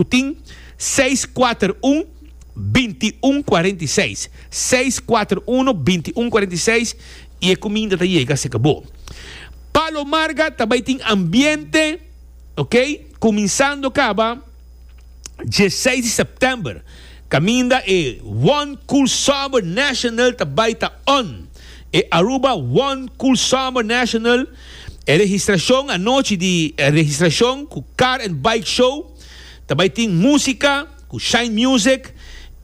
Cu tin seis kuater un, binti un kuarenta i seis. Seis kuater uno, binti un kuarenta i seis i e kuminda ta yega serka bo. Pa lo marga ta bai tin ambiente, ok, kuminsando kaba dieseis di sèptèmber, kaminda e One Cool Summer National ta bai ta on. E Aruba One Cool Summer National. E registrashon anochi di registrashon ku Car and Bike Show ta bai tin músika ku Shine Music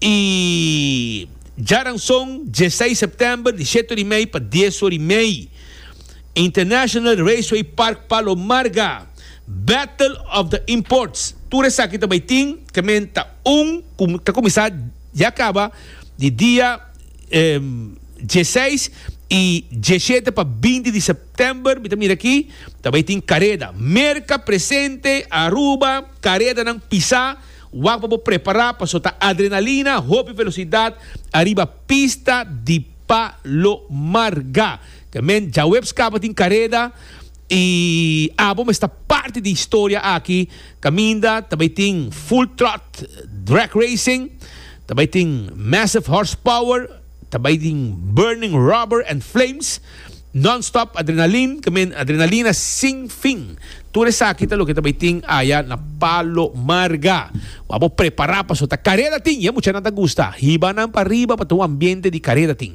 i djaranson dieseis sèptèmber di shete ori mei pa dies ori mei International Raceway Park Palomarga Battle of the Imports tur esaki ta bai tin kementa un ku ta kuminsá ya kaba di dia dieseis y dieshete pa binti di september mi ta mira aki ta bay tin careda merca presente Aruba caredanan pisa wak pa bo prepara paso ta adrenalina hopi velocidad ariba pista di Palomar ga te men djaweps caba tin careda. I abo mes ta parti di historia aki caminda ta bay tin full trot drag racing, ta bay tin massive horsepower, ta bay tin burning rubber and flames, non-stop adrenaline, que men adrenalina sin fin. Tur esaki ta loke ta bay tin aya na Palo Marga. Wou abo prepara paso ta careda tin y e muchanan ta gusta. Hiba nan pa riba pa ta un ambiente di careda tin.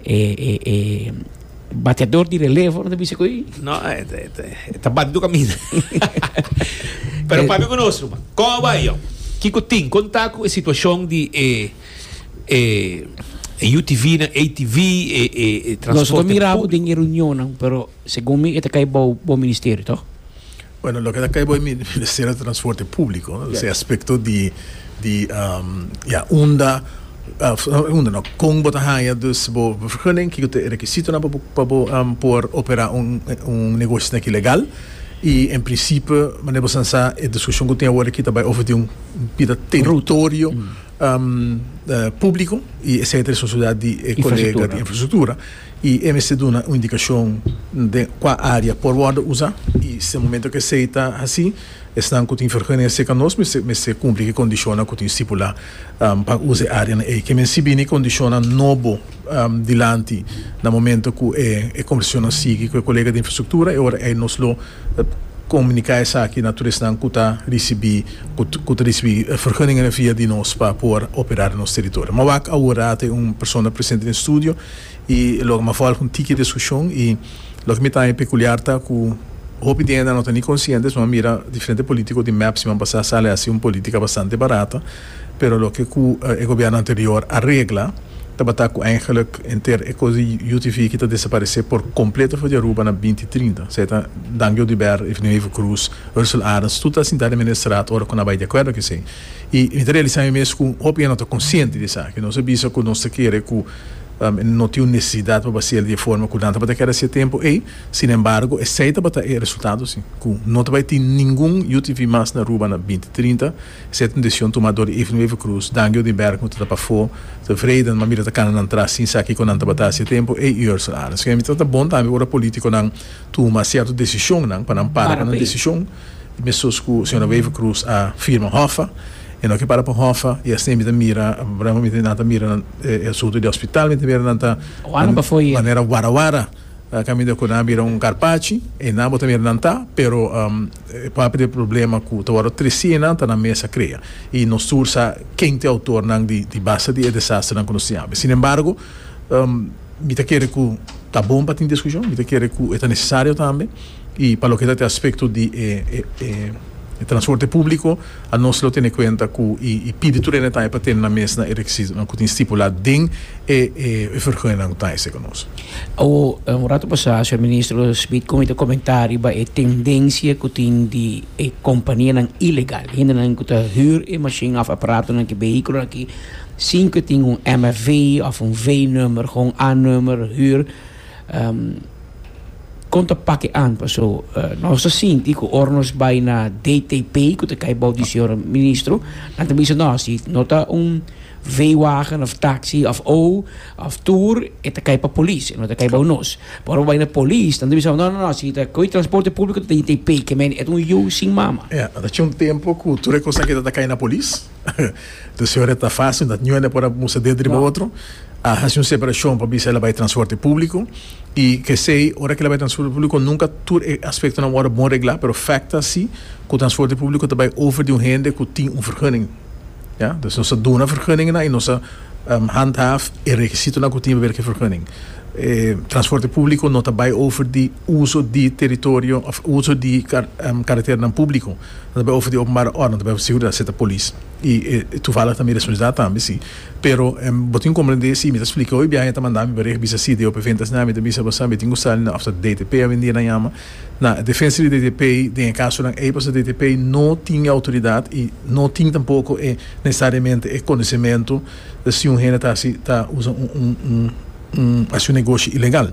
E e e bateador di relevo no ta bisa ku ei? No, e ta e ta e ta bate tur kaminda. Pero papia ku nos ruman. Kon a bai yon? Kiko tin? Kon ta ku e situashon di e e e UTVnan, ATV, e e e transporte públiko? Nos a mira bo den e reunionnan, pero segun mi e ta kai bou bo ministerio, to? Bueno, loke ta kai bo mi ta ser e transporte publico, e aspecto di di ya unda unda no con bo ta haya dus bo vergunning kico ta e requisitonan pa bo pa bo por opera un un negoshi na aki legal y en principio manera bo san sa e discusion cu tin awor aki ta bay over di un bida territorio publico y esey ta responsabilidad di e colega di infrastructura. I e mester duna un indikashon den kua área por wòrdu usa. I si momentu ku esei ta hasi, esnan ku tin vergunning aserka nos mester mester kumpli ku e kondishonnan ku tin stipulá pa usa e áreanan ei. Ke men si bini kondishonnan nobo dilanti na momentu ku e e kombersashonnan sigui ku e kolega di infrastruktura, e ora ei nos lo komuniká esaki na tur esnan ku ta risibí ku ku ta risibí vergunningenan via di nos pa por operá den nos teritorio. Mawak awor a ta un persona presente den e studio. I lo mi a fo algun tiki diskushon i loke mi ta haña pekuliar ta ku hopi di hende a no ta ni konsiente so a mira diferente polítiko di mep siman pasá sali a hasi un polítika bastante barato pero loke ku e gobièrnu anterior a regla tabata ku eingelik enter e kos di UTV ki ta desaparesé por kompleto for di Aruba na binti trinta esei ta Dan Jody Baer, Evelyn Heuvel Croes, Ursel Arends tur ta sintá den mene strat ora ku nan bai di akuerdo ku esei i mi ta realisá mi mes ku hopi hende no ta konsiente di esaki nos a bisa ku nos ta kere ku. No tin un nesesidat pa basia el di e forma ku nan tabata kere hasia tempu ei. Sin embargo, esei tabata e resultado si, ku no ta bai tin ningun UTV mas na Aruba na binti trinta. Esei ta un desishon tumá dor di Evelyn Wever-Croes, Dangi Odinberg, nu ta tapa afó, ta Vreiden, ma mi lo ta kana nan tras sin sa kiko nan tabata hasia tempu ei, i Ursel Arends. P'esei mi ta tratá bon tambe ora polítikonan tuma sierto desishonnan, pa nan para ku nan desishon. E mesuz ku señora Wever Croes a firma Hoffa, e no ke para pa Hoffa i asina mi ta mira bravamente nan ta mira e asuntu di e hospital, mi ta mira nan ta manera wara wara kaminda ku nan a bira un karpachi i nan bo ta mira nan ta pero e papia di e problema ku ta wòrdu tresi einan ta nan mes a krea i nos tur sa ken ta e outornan di basta di e desasternan ku nos tin habi. Sin embargo mi ta kere ku ta bon pa tin diskushon, mi ta kere ku e ta nesesario tambe. Y pa loke ta e aspecto di e transporte publico, anos lo tene cuenta cu y pidi tur e detaye pa tene nan mes na e requisitonan cu tin stipula den e vergunjenan cu ta hese cu nos. Awor, un rato pasa, Señor Ministro Smit con e ta comenta riba e tendencia cu tin di e companianan ilegal, hendenan cu ta huur e machine of aparatonan cu vehiculonan aki sin cu tin un MFV of un V-number, con un A-number, huur. Kon ta pake an? Paso nos ta sinti ku ora nos bai na DTP, ku ta kai bou di señor ministro, nan ta bisa no, si no ta un veewagen òf taksi òf ou òf tur e ta kai pa polis, e no ta kai bou nos. Pero ora bo bai na polis nan ta bisa bo no, no, no, si ta koi transporte públiko ta DTP, ke men e ta un yu sin mama. Ya, ta tjin un tempu ku tur e kosnan akí ta ta kai na polis. Entonces ora ta fácil, no ta niun por a musta dentro riba otro. A haci un separacion pa bisa el a bai transporte público. Y kesey, ora ki el a bai transporte público nunca tur e aspectonan wòrdu bon reglá, pero fèkt ta si ku transporte público ta bai over di un hende ku tin un vergunning. Ya, entonces nos ta duna vergunningennan y nos ta handhaaf e rekisitonan ku tin probeer ku e vergunning. E transporte público no ta bai over di uso di territorio òf uso di karakternan público. Nan ta bay ofrece di openbare orden, ta bay seguridad seta polis y e toevallig ta mi responsabilidad tambe si, pero bo tin comprende si mi ta splica hoy biaha e ta manda mi pa reg bisa si de opevent asina mi ta bisa bo sa mi tin cu sali na ofta DTP a venir a yama na defensa di DTP den e casonan ey pasobra DTP no tin e autoridad y no tin tampoco e necesariamente e conocemento ta si un hende ta haci ta usa un un un haci un negoshi ilegal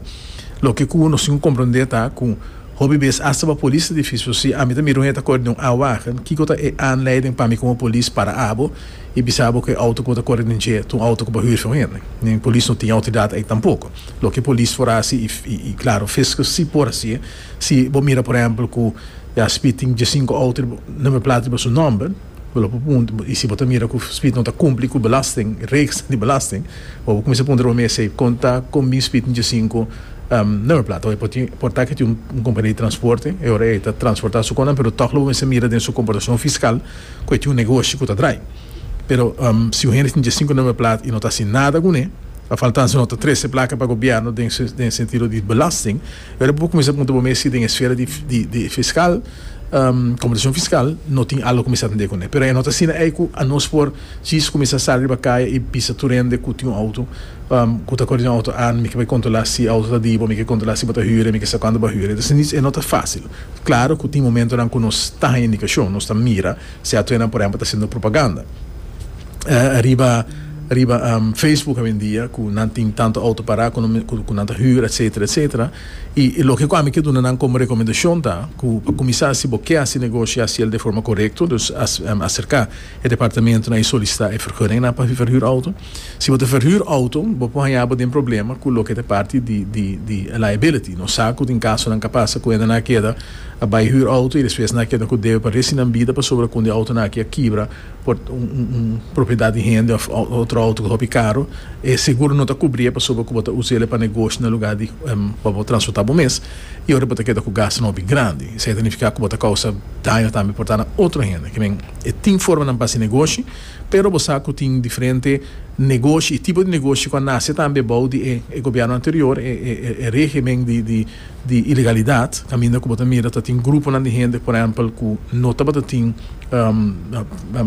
loke cu nos tin cu comprende ta cu. Hopi bes asta pa polis ta difícil so si ami ta mira un hende ta kore den un aanwagen, kiko ta e aanleiding pa mi komo polis para abo i bisa abo ku e outo ku bo ta kore den dje ta un outo ku bo huur for un hende? Nin polis no tin outoridat ei tampoko. Loke polis por hasi i klaro fiskus si por hasié si bo mira por ehempel ku ya Spit tin diesinku outo na Meplat riba su nòmber, Bo lo por puntra, y si bo ta mira cu Smith no ta cumpli cu belasting, reeks di belasting, bo por cuminsa puntra bo mes esey, con ta con mi Smith Nce Cinco nummerplaat? Awor e por tin, por ta cu e tin un compania di transporte, e ora ey ta transporta su conan, pero toch lo bo mester mira den su comportacion fiscal cu e tin un negoshi cu ta draai. Pero si un hende tin Nce Cinco nummerplaat y no ta haci nada cu ne, a faltanza no ta trece placa pa Gobierno den sentido di belasting, Pero bo por cuminsa punta bo mes si den esfera di fiscal, computacion fiscal, no tin algo cu mi sa tende cune. Pero e no ta asina ey cu anos por djis cuminsa sali riba caya y bisa tur hende cu tin un auto, cu ta cor den un auto an, mi ke bay controla si e auto ta di bo, mi ke controla si bo ta hüre, mi ke sa cuando bo a hüre. Entonces, e no ta facil. Claro cu tin momentonan cu nos ta haña indicacion, nos ta mira. Si atuenan por ehempel ta haciendo propaganda riba riba Facebook awendia cu nan tin tanto auto para cu cu nan ta huur etcetera etcetera y y loke cu ami ke duna nan como recomendacion ta cu pa cuminsa si bo ke haci negoshi haciel de forma corecto, dus acerca e departamentonan y solicita e vergunningennan pa verhuur auto. Si bo ta verhuur auto, bo por haña bo den problema cu loke ta parti di liability. Nos sa cu tin casonan ca pasa cu hende nan a keda a bay huur auto y despues nan a keda cu debe pa reci nan bida pasobra cu un di autonan aki a kibra por un propiedad di hende of otro auto cu ta hopi caro. E seguro no ta cubri'e pasobra cu bo ta usa'e pa negoshi na lugar di pa bo transporta bo mes y oca bo ta keda cu gastunan hopi grandi. Esey ta nifica cu bo ta causa daño tambe por ta na otro hende. Kimen e tin formanan pa haci negoshi. Pero bo sa ku tin diferente negoshi i tipo di negoshi ku a nase tambe bou di e e gobièrnu anterior, e e regimen di di di ilegalidat, kaminda ku bo ta mira ta tin gruponan di hende, por ehèmpel, ku no tabata tin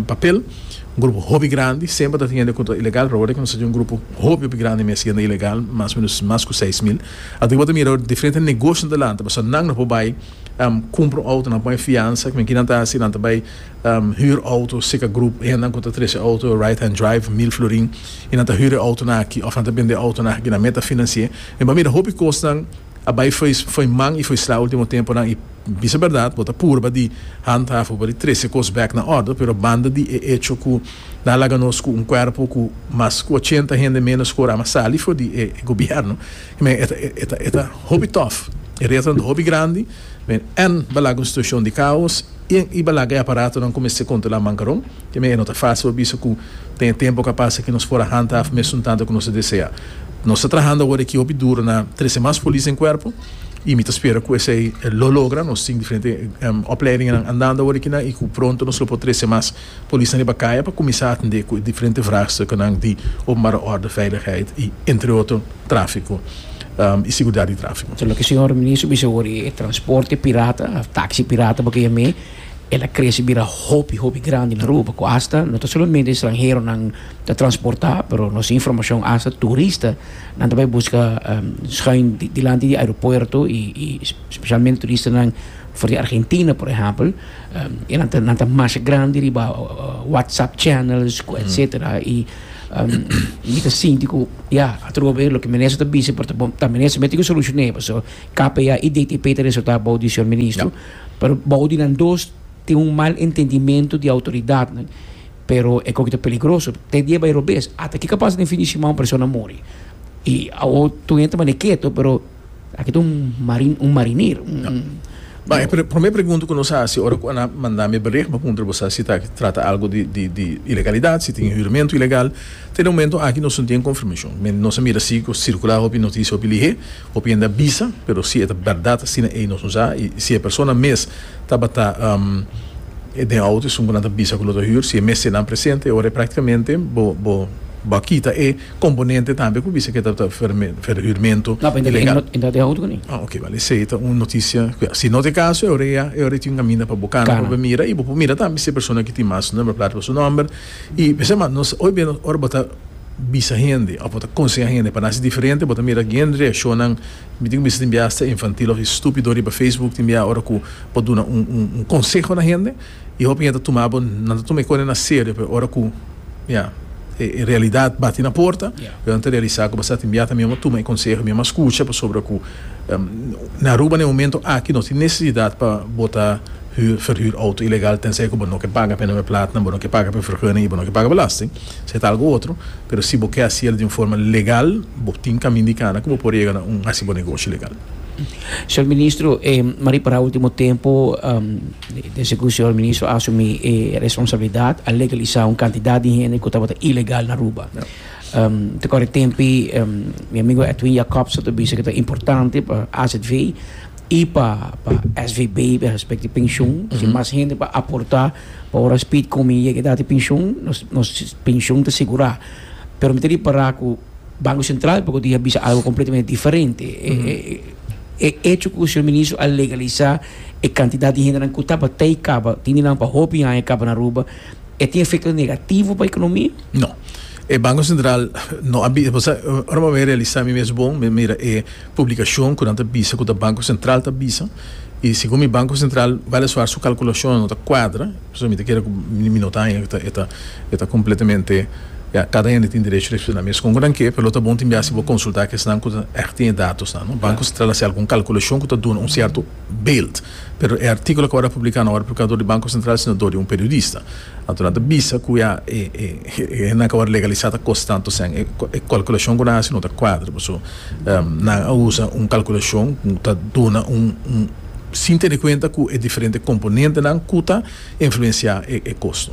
papel, un grupo hopi grandi, semper ta tin hende ku ta ilegal, pero awor e kumsa tin un grupo hopi hopi grandi mes hende ilegal, mas menos mas ku seis mil. Anto ku bo ta mira diferente negoshinan ta lanta, pasobra nan no por bai kumpra un outo, nan pon e fiansa, kinan ta hasi, nan ta bai. Huur auto, Sika Group, e hendenan ku ta trese auto, Right Hand Drive, Mil Florin, y nan ta huur e autonan aki òf nan ta bende e autonan aki na Meta Financié. Mi a mira hopi kosnan a bai fo'i fo'i man y fo'i sla último temponan y bisa bèrdat bo ta purba di handhaven pa di trese kos bèk na òrdu, pero banda di e echo ku nan a laga nos ku un kuerpo ku mas ku ochenta hende ménos ku orama sali for di e gobièrnu, men e ta e ta e ta hopi tòf. E retanan ta hopi grandi, men èn balak un situashon di kaos. Tin iba laga e aparatonan ku mester kontrolá mankaron. Te men e no ta fásil pa bisa ku ten e tempu ka pasa ku nos por a hanta af mesun tantu ku nos ta deseá. Nos ta trahando awor aki hopi duru na trese mas polis den kuerpo i mi ta spera ku esei lo logra. Nos tin diferente opleidinganan andando awor aki nan i ku pronto nos lo por trese mas. Polisnan riba kaya pa kuminsá atendé ku e diferente vraagstukennan di openbare orde, veiligheid i entre otro tráfiko i seguridat di tráfiko. Loke señor Minister bisa awor i e transporte pirata, taxi pirata bo ke yam'é, el a krese bira hopi hopi grandi na Aruba ku asta no ta solamente estranheronan ta transportá pero nos informashon asta turista nan ta bai buska schuin dilanti di aeropuerto i spesialmente turistanan for di Argentina por ehèmpel. E nan ta nan ta mas grandi riba WhatsApp channels cu etcetera y mi ta sinti cu ya atrobe loke minister ta bisa por ta bon ta minister mi tin ki solucione paso KPA y DTP ta resulta abao di señor ministro pero bao di nan dos tin un mal entendimiento di autoridadnan. Pero e koki ta peligroso, te dia bai robes. Ata kiko a pasa den fin di siman un persona a muri. I awo tur hende ta manda e keto, pero aki ta un marin, un marinir, un. Bon, e promé pregunta ku nos a hasi ora ku a na manda mi berigbo a puntra bo sa si ta trata algu di di di ilegalidat, si tin huramentu ilegal. Te momentu aki nos no tin e konfirmashon. Nos a mira si ku a sirkula hopi notisia hopi lihé. Hopiende a bisa, pero si e ta berdad asina ey nos usa, y si e persona mes tabata den auto esun cu nan ta bisa cu lo ta huur, si e mes te nan presente, e ora ey practicamente bo bo bo a kita e componente tambe cu bisa cu e tabata verhuurmento ilegal. E no ta den auto cu ni. Ah ok, bale esey ta un noticia cu ya. Si no ta e caso e ora ey e ora ey tin un caminda pa bo cana pa bo mira y bo por mira tambe si e persona cu tin mas number plata pa su number y p'esey mas nos hoy bia ora bo ta bisa hende of bo ta konseha hende pa nasi diferente bo ta mira algén reakshonnan mi tin ku bisa tin bia asta infantil of estúpido riba facebook tin bia ora ku bo duna un konseho na hende i hopi hende ta tuma bo nan ta tuma e kosnan aserio pero ora ku ya e realidat bati na porta e nan ta realisá ku basta tin bia ta mi mama tuma e konseho mi mama skucha pasobra ku na Aruba na e momento aki no tin nesesidat pa bo ta hür ferhür outo ilegal tensei ku bo no ke paga p'e nome platnan bo no ke paga p'e ferguning i bo no ke paga belasting. Sea ta algo otro, pero si bo ke hasiel di un forma legal, bo tin kamin di kana ku bo por yega na un hasi bo negoshi legal. Señor Ministro, e Marie para ultimo tempo den segun señor Ministro a asumi e responsabilidad a legalisá un cantidad di hende ku tabata ilegal na Aruba. Te kore tempi mi amigo Edwin Jacobs a ta bisa ku ta importante pa AZV i pa SVB respecto di penshun si mas hende por aportá. Pa ora Speed ku mi yega edat di penshun, nos nos penshun ta sigurá. Pero mi ta ripará ku Banko Sentral por kudí a bisa algu kompletamente diferente. E e echo ku Señor Ministro a legalisá e kantidat di hendenan ku tabatai kaba, tin di nan pa hopi aña kaba na Aruba, e tin efekto negativo pa ekonomia? No. E Banko Sentral no a bisa, ora bo a realisá mi mes bon, mi a mira e. Publikashon ku nan ta bisa ku ta Banko Sentral ta bisa, i segun mi Banko Sentral bal e suar su kalkulashonnan no ta kuadra, pasobra mi ta kere ku mi no ta haña ku e ta e ta kompletamente, ya, kada hende tin derecho di ekspliká mes kon ku nan ke, pero lo ta bon tin biasi bo konsultá ak esnan ku ta ègt tin e datosnan, no. Banko Sentral hasi algun kalkulashon ku ta duna un sierto beeld. Pero e artíkulo a kobada publiká no a wòrdu publiká dor di Banko Sentral sino dor di un periodista. Anto nan ta bisa ku ya e hende nan ka wòrdu legalisá ta kos tantu esei. E kalkulashon ku nan hasi no ta kuadra pasobra nan a usa un kalkulashon ku ta duna un sin tene kuenta ku e diferente komponentenan ku ta. influenciá e kosto.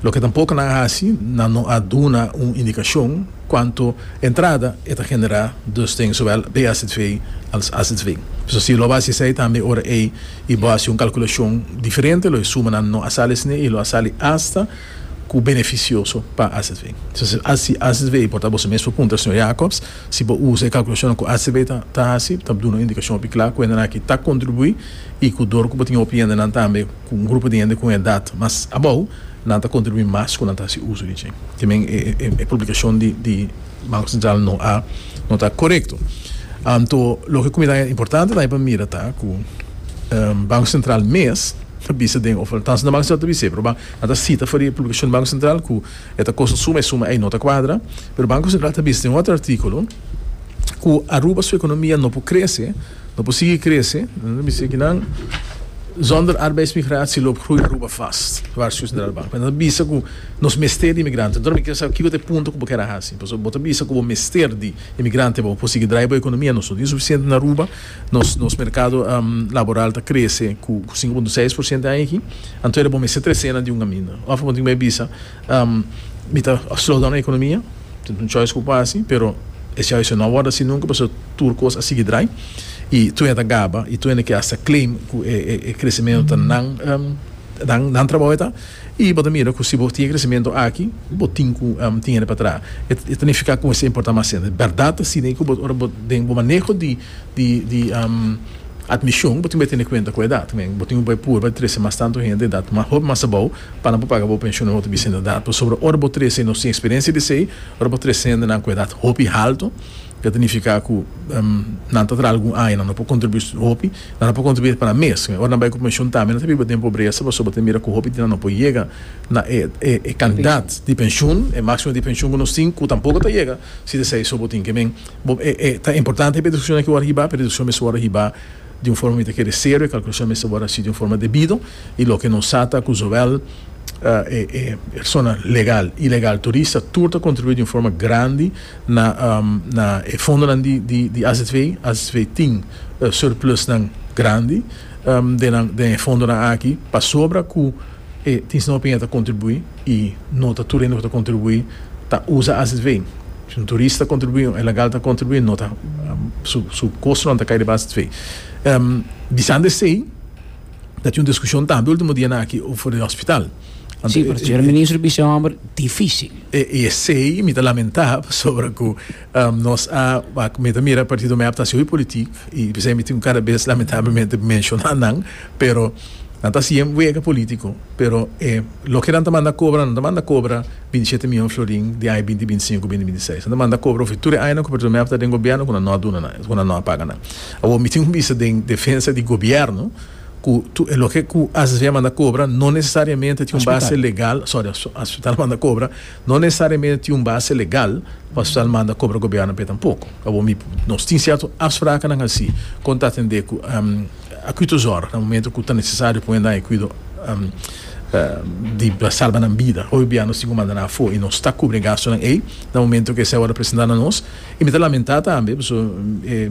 Loke tampoco nan a haci, nan no a duna un indicacion cuanto entrada e ta generá dus den zowel BAZV als AZV. Pues así lo a haci esei tambe ora ei y bo haci un calculacion diferente lo e sumanan no a sali esne y lo a sali hasta cu beneficioso pa AZV. Pues si AZV por ta boso mes por puntra señor Jacobs si bo usa e calculacionnan cu AZV ta haci ta duna un indicacion hopi cla cu hendenan aki ta contribuí. i ku dor ku bo tin hopi hendenan tambe ku un grupo di hende ku un edat mas abou, nan ta kontribuí mas ku nan ta hasi uso di dje. Ti men e publikashon di Banko Sentral no a no ta korekto. Anto loke ku mi ta importante ta pa mira ta ku Banko Sentral mes ta bisa den òf ta Banko Sentral ta bis'é pero nan ta sita for di e publikashon di Banko Sentral ku e ta kosta suma i suma ei no ta kuadra pero Banko Sentral ta bisa den otro artíkulo ku Aruba su ekonomia no por krese. No por sigui krese nan zonder arbeidsmigratie loop groei Aruba vast, waarschuwt Centraal Bank. Mens ta bisa cu nos mester di inmigrante. Anto nan mi kier sa kico ta e punto cu bo kier a haci. Pasobra bo ta bisa cu bo mester di inmigrante pa bo por sigui draai bo economia. Nos no tin suficiente na Aruba. Nos nos mercado laboral ta crece cu sinku punto seis por ciento e aña aki. Anto era bo mester trece nan di un caminda. Of bo tin bay bisa. Mi ta slow down e economia, tin un choice cu por haci, pero e choice yo no a wordo asin nunca pasobra tur cos a sigui draai y tur hende ta gaba y tur hende ke hasta claim cu e crecemento ta nan nan trabao eta y bo ta mira cu si bo tin e crecemento aki bo tin cu tin hende patraha. E ta nifica cu bo mester importa mas hende. Berdad ta asina y cu bo ora bo den bo maneho di. di admishon bo tin bai tene kuenta ku edat tambe bo tin ku bai purba di trese mas tantu hende edat hopi mas abou paran por paga bo penshon na otro bisende edat pasobra ora bo trese y nos tin eksperensia di esei ora bo trese hendenan ku edat hopi haltu ta signifiká ku nan ta traha algun aña nan no por kontribuí hopi nan no por kontribuí pa nan mes ora nan bai ku penshon tambe nan ta biba den pobresa pasobra bo ta mira ku hopi di nan no por yega na e kandidat di penshon e maksimo di penshon ku nos tin ku tampoko ta yega si ta esei so bo tin ke men Bo, e, e ta importante pa e discusion aki wòrdu hibá, pero e discusion mester wòrdu hibá di un forma mi ta kere serio, e calculacion mester wòrdu haci di un forma debido, i loke nos sa ta cu zowel e, e persona legal, ilegal, turista, tur ta contribuí di un forma grandi na, na e fondonan di, di, di AZV. AZV tin surplusnan grandi den nan, den e fondonan aki, pasobra cu e tin snòmper mey a ta contribuí i no ta tur hende cu ta contribuí ta usa AZV. Si un turist ta kontribuí, un ilegal ta kontribuí, no ta, su kosnan ta kai debas dfe. Bisando esei, ta tin un diskushon tambe último dianan aki offer di hospital. Sí, pero señor ministro bisa un homber difícil. I esei mi ta lamentá pasobra ku nos a, mi ta mira partido mep ta hasi hopi politik i p'esei mi tin kada bes lamentablemente menshoná nan, pero nan ta hasi e wega polítiko, pero e loke nan ta manda kobra nan ta manda kobra. binti shete miyon florin di aña binti binti sinku binti binti seis. Nan ta manda kobra hopi tur e añanan ku Bertolomeo a tabata den gobièrnu ku nan no a duna nan, ku nan no a paga nan. Awor mi tin un bisa den defensa di gobièrnu ku tur e loke ku asv a manda kobra no nesesariamente tin un base legal, sòri, hospital a manda kobra no nesesariamente tin un base legal pa hospital manda kobra gobièrnu p'e tampoko. Awor mi nos tin sierto afsprakanan hasi kon ta atendé ku. A cuitos ora, na momento cu ta necesario pone nan e cuido di salba nan bida, hoy bia nos tin cu manda nan afo y nos ta cubri e gastonan ey na momento cu esey ora presenta na nos. Y mi ta lamenta tambe pasobra e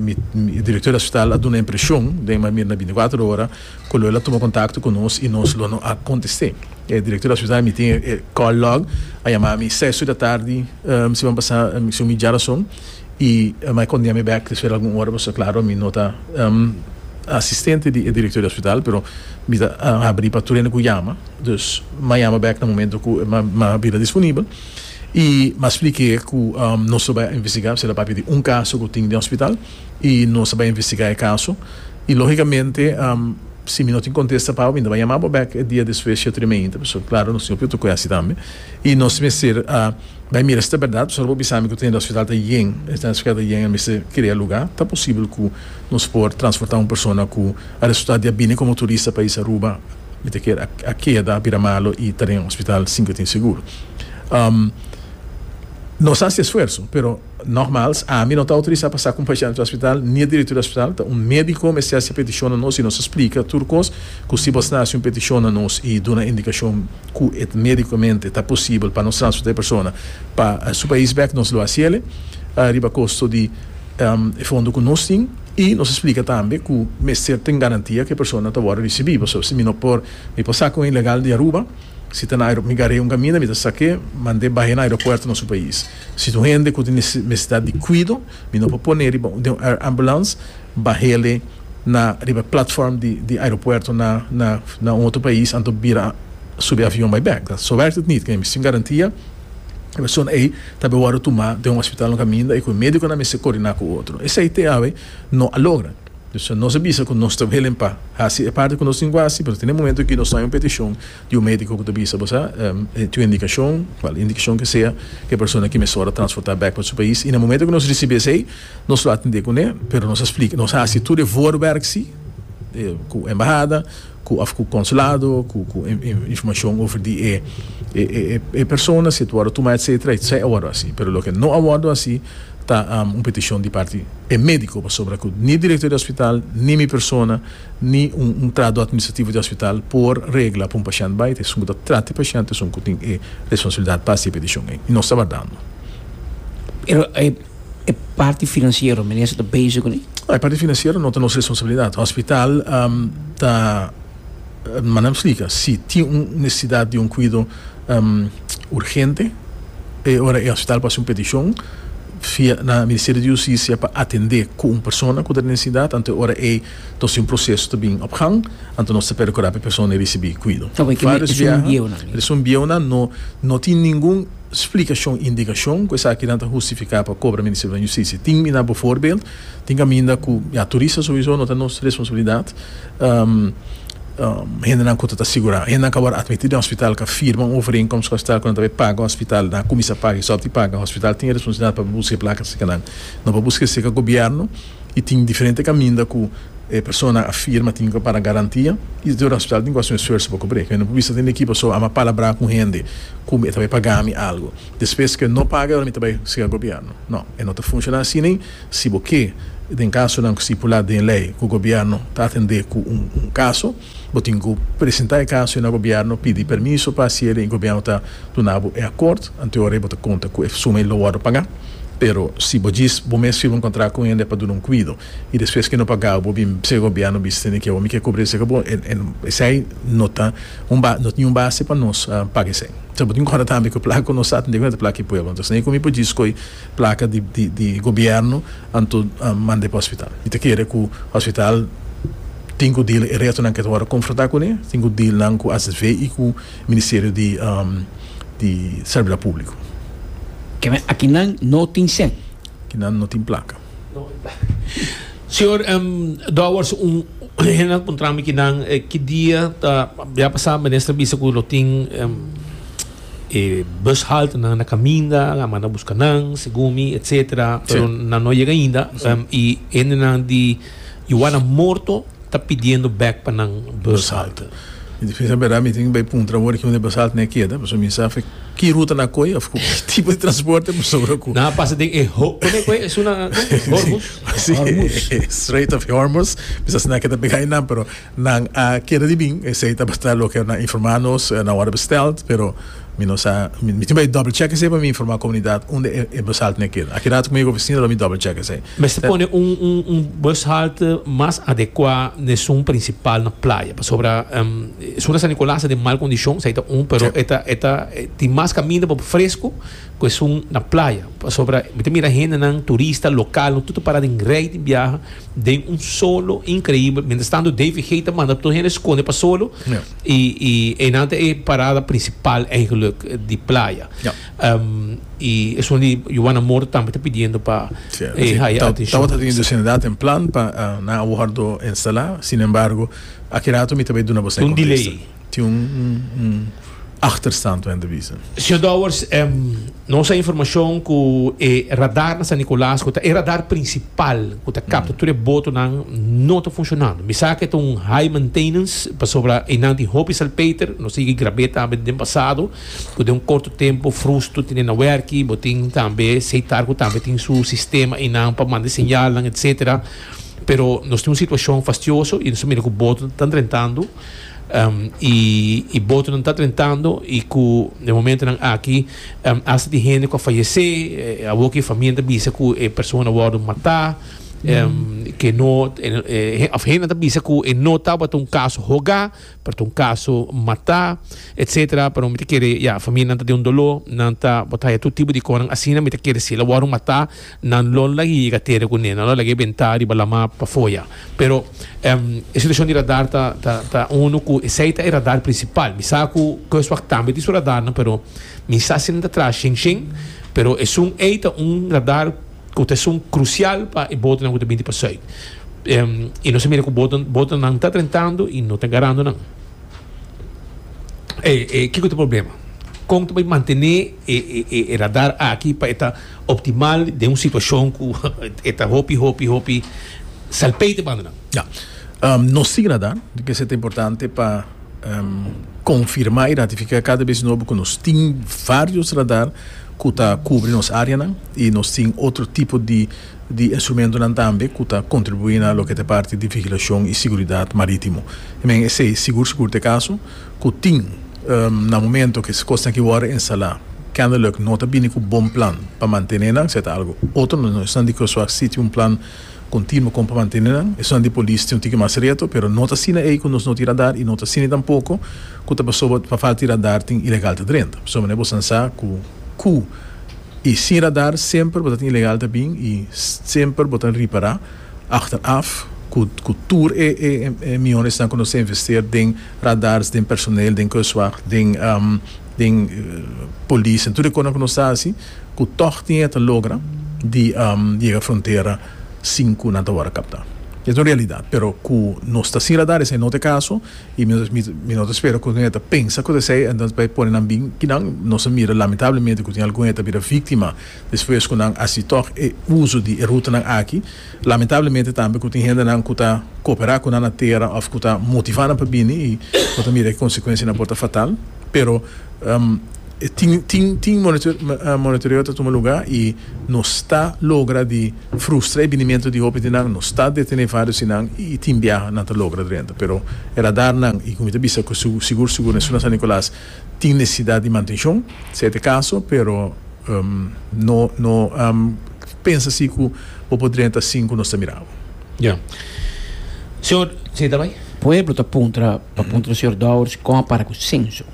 director di hospital a duna impresion den e manera na binticuatro ora cu lo el a tuma contacto cu nos y nos lo no a conteste. E director di hospital, mi tin e call log, a yama mi seis ur di atardi, si mi a pasa, si mi djara son. i mi a kondia mi bek despues di algun ora pasobra claro mi no ta asistente di e director di hospital pero mi ta habri pa tur hende cu yama dus mi a yama bek na momento cu mi a bira disponibel i mi a spliki'e cu nos lo bai a investiga pasobra papi di un caso cu tin den hospital i nos a bai a investiga e caso i logicamente si mi no tin contesta pa bo mi no ta bai yama bo bek e dia despues di ciento di mainta pasobra claro nos tin hopi otro cosa tambe. Y nos mester a bay mira si ta berdad, solo pa bisami cu ta hende hospital ta yen, esta hospital ta yen, el mester crea lugar. Ta posibel cu nos por transporta un persona cu a resulta di a bini como turista pais Aruba, mi ta kier a keda, a bira malo y ta den hospital sin cu tin seguro. Nos a haci esfuerzo, pero. Nogmaals, ami no ta autorisá pa sa ku un pashènt ta ospital, ni e direktor di ospital. Ta un médiko mester hasi e petishon na nos i nos a splika tur kos. Ku si bo sta hasi un petishon na nos i duna indikashon ku e ta médikomente ta posibel pa nos transportá e persona pa su pais bèk, nos lo hasi el riba kosto di e fondo ku nos tin. I nos a splika tambe ku mester ten garantia ku e persona ta wòrdu risibí. Pasobra si mi no por, mi por saka un ilegal di Aruba, si ta na aeropuerto mi gar'é un kaminda, mi ta sak'é, mand'é bah'é na aeropuerto na su pais. Si tin un hende ku tin nesesidat di kuido, mi no por pone riba den un air ambulance, bahele na riba e platform di aeropuerto na un otro pais anto bira subi avion bai bek. Ta, Zover dit nit kende mi sin garantia e persona ei ta be wòrdu tumá den un hospital no kaminda i ku e médikonan mester kordiná ku otro. Esei te awe no a logra. Nos a bisa ku nos ta willing pa hasi e parti ku nos tin ku hasi, pero tin e momentu aki nos ta hoi un petishon, di un médiko ku ta bisa bo sa e tin un indikashon, kual e indikashon ke sea, ku e persona ke mesora transportá bèk pa su pais. I na momentu ku nos risibí esei, nos lo atendé kuné, pero nos a splika, nos a hasi tur e voorwerk sí, ku embahada, ku òf ku konsulado, ku informashon over di e e persona, si e ta wòrdu tuma etsetera, i esei a wòrdu hasi. Pero loke no a wòrdu hasi ta un petishon di parti e médiko, pasobra ku ni direktor di òspitaal, ni mi persona, ni un trado administrativo di hospital por regla pa un pashent bai ta esun ku ta trata e pashent esun ku tin e responsabilidad pa hasi e peticion ei i nos ta bardando. Pero e parti financiero meneer sa ta bezig ku e? E parti financiero no ta nos responsabilidad. Hospital ta manda mi splika si tin un necesidad di un cuido urgente e ora e hospital por hasi un peticion via na Ministerio di Justicia pa atende ku un persona ku ta den necesidad anto e ora ei Tos tin proseso ta bin op gang, anto nos ta percura p'e persona e ricibi cuido. Vários biaha, eres un bieunan no no tin ningun splicacion, indicacion cu esakinan ta hustifica pa cobra Ministerio di Justicia. Tin mina bovoorbeeld, tin caminda cu ya turista sowiso no ta nos responsabilidad, hendenan cu ta ta sigura, hendenan cu a wor admití den hospital cu a firma un overeenkomst cu hospital cu nan ta bay paga hospital, nan a cuminsa paga y stop di paga, hospital tin e responsabilidad pa busca e placa si esaki nan no pa busca esaki gobierno. y tin diferente caminda cu e persona a firma tin cu para garantia y te hospital tin cu haci un esfuerzo pa cubri. Cu e no por bista tin e equipo so a ma palabrá cu hende cu e ta bay paga mi algo despues cu e no paga awor mi ta bay siga gobierno. No, e no ta funciona así ni si bo ke den casonan cu stipulá den ley cu gobierno ta atende cu un caso. Bo tin cu presenta e caso y na Gobierno pidi permiso pa hacier y Gobierno ta duna bo e acord, anteora y bo ta conta cu e suma y lo wordo paga. Pero si bo djis bo mes firma un contract cu un hende pa duna un cuido y despues que e no pagao bo bin bse Gobierno bisti tene que awa mi ke cubra esaki bo esey no ta un base no tin un base pa nos paga esey. Sa bo tin conta tambe cu placa cu nos sa tende cu no ta placa y pueblo. Entonces na y cu mi por djis scoy placa di di gobierno anto mand'e pa hospital y ta kere cu hospital tin cu deal e retonan cu e ta worde confronta cune tin cu deal nan cu HZV y cu ministerio di di servidor publico. Keme akinan no tin sen. Kinan no tin placa. Señor Dowers un hen a puntrami kinan ki dia ta ya pasa minister a bisa cu lo tin. E bus halt nan a caminda, a manda busca nan, segun mi, etc. Pero nan no a yega ainda. Y hendenan di Juana Morto ta pidiendo bek pa nan bus halt. Mi ta pensa bera mi tin bay puntra awor aki unda e bus halt ne a keda, pasobra mi sa afe ki ruta nan a coy of cu tipo di transporte pasobra cu. Nan a pasa den e ho, con e cu e esuna? Hormuz? Hormuz. Strait of Hormuz. Mi sa si nan a keda pega ay nan, pero Nan a keda di bin, esei tabata loke nan informa nos na wòrdu bestèld, pero mi no sa, mi tin bai double check esei pa mi informa komunidat unda e bushalte na keda. Aki rato ku mi yega ofisina lo mi double check esei. Mester pone un un bushalte mas adekua n'esun prinsipal na playa, pasobra esun na San Nicolas ta den mal kondishon, esei ta un, pero e ta e ta tin mas kaminda pa fresku. cu esun na playa pasobra mi ta mira hendenan turista local lo tur ta para den rey di biaha den un solo increibel mientras tanto Davey Gate ta manda tur hende sconde pa solo y y eyenan ta e parada principal eigenlijk di playa y esun di Juana Moore tambe ta pidiendo pa e haya atencion Tabata tin dus hende dato en plan pa nan a wordo instala sin embargo aki rato mi ta bay duna boso e contesta. tin un achterstand pa hende bisa. Señor Dowers, nos a informacion cu e radar na San Nicolas, cu ta e radar principal cu ta capta tur e botonan, no ta funcionando. Mi sa cu e ta un high maintenance, pasobra einan tin hopi salpeter. Nos a yega grab'é tambe den pasado, cu den un corto tempo frustu tine na werki. Bo tin tambe seitar cu tambe tin su sistema einan pa manda e señalnan, etcetera. Pero nos tin un situacion fastioso y nos a mira cu boto ta drentando. y botonan ta trentando y cu den momentonan aki hasta tin hende cu a fayece, awo cu e famia ta bisa cu e persona a wordo mata, ke no of hende ta bisa cu e no tabata un caso hoga pero ta un caso mata etcetera, pero mi ta kere ya, familianan ta den un dolo, nan ta botaya tur tipo di conan, asina mi ta kere si el a wordo mata. Nan lo lag'e yega tera cu ne. Nan lo lag'e benta riba lama pa foya. Pero e situacion di radar ta ta uno cu esey ta e radar principal. Mi sa cu Kustwacht tambe tin su radarnan, pero mi sa si nan ta traha shen shen. Pero esun ey ta un radar cu ta esun crucial pa e botonan cu ta binti pa Zuid. Y nos a mira cu boto botonan ta drentando y no ta garando nan. E kico ta e problema? Con ta bay mantene. E radar aki pa e ta optimal den un situashon ku e ta hopi hopi hopi salpei te banda nan. Ya. Nos tin radar, di kesa e ta importante pa konfirmá i ratifiká kada bes nobo ku nos tin vários radar ku ta kubri nos áreanan i nos tin otro tipo di di instrumentonan tambe ku ta kontribuí na loke ta e parti di vigilashon i siguridat marítimo. Men esei sigur sigur ta e kaso. ku tin na momento ku kos aki wòrdu instalá kennelijk no ta bini ku bon plan pa mantené nan, seta algu otro, nos esnan di Crosswalk si tin un plan kontinuo kon pa mantené nan, esnan di polis tin un tiki mas reto, pero no ta asina ei ku nos no tin radar i no ta asina tampoko ku ta pasobra pa falta di radar tin ilegalta drenta, pasobra manera bo san sa ku ku i sin radar semper bo ta tin ilegalta bin i semper bo ta ripará achteraf ku tur e e e miones nan ku nos ta investeer den radars den personel den kustwacht den den polis en tur e konan ku nos ta hasi ku tòg tin e ta logra di yega frontera sin ku nan ta wòrdu kaptá es un realidat pero ku nos ta sin radar esei no ta e kaso i mi no ta spera ku nan e ta pensa ku ta esei entonces bai pone nan bin ki nan nos a mira lamentablemente ku tin algun e ta bira víktima despues ku nan hasi tòg e uso di e rutanan aki. Lamentablemente tambe ku tin hendenan ku ta koperá ku nan na tera òf ku ta motivá nan pa bini i bo ta mira e konsekuensianan por ta fatal. Pero tin tin tin monitoreo ta tuma lugá i nos ta logra di frustra e binimentu di hopi di nan, nos ta detené varios di nan i tin biaha nan ta logra drenta. Pero e radarnan i ku mi ta bisa ku sigur sigur na Suna San Nicolas, Tin necesidad di mantencion, si e ta e caso, pero no no pensa si cu bo por drenta sin cu nos ta mira bo. Ya. Señor, si ta bay? Pueblo ta puntra pa puntra señor Dowers con a para cu censo.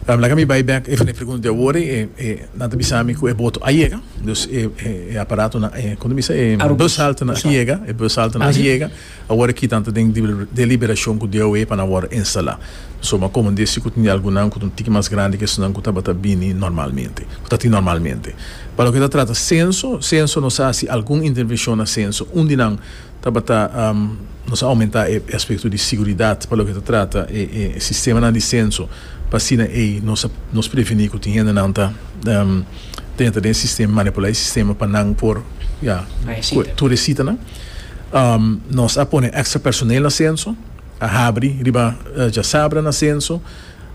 Laga mi bay bek even e pregunta di awor e e nan ta bisa mi cu e boto a yega, dus e e aparatonan, e con ta bisa e bus haltenan a yega, e bus haltenan a yega. Awor aki tantu den deliberashon ku DOE pa nan wòrdu instalá. Suma komandé si ku tin di algunan ku ta un tiki mas grandi ke esnan ku tabata bini normalmente, ku ta tin normalmente. Pa loke ta trata senso, senso nos a hasi algun intervenshon na senso. Un di nan tabata nos a oumentá e aspekto di siguridat pa loke ta trata e sistemanan di senso pa asina ei nos prevení ku tin hendenan ta dentra den e sistema, manipulá e sistema pa nan por tur e sitanan. Nos a pone extra personel na censo, a habri riba djasabra na censo,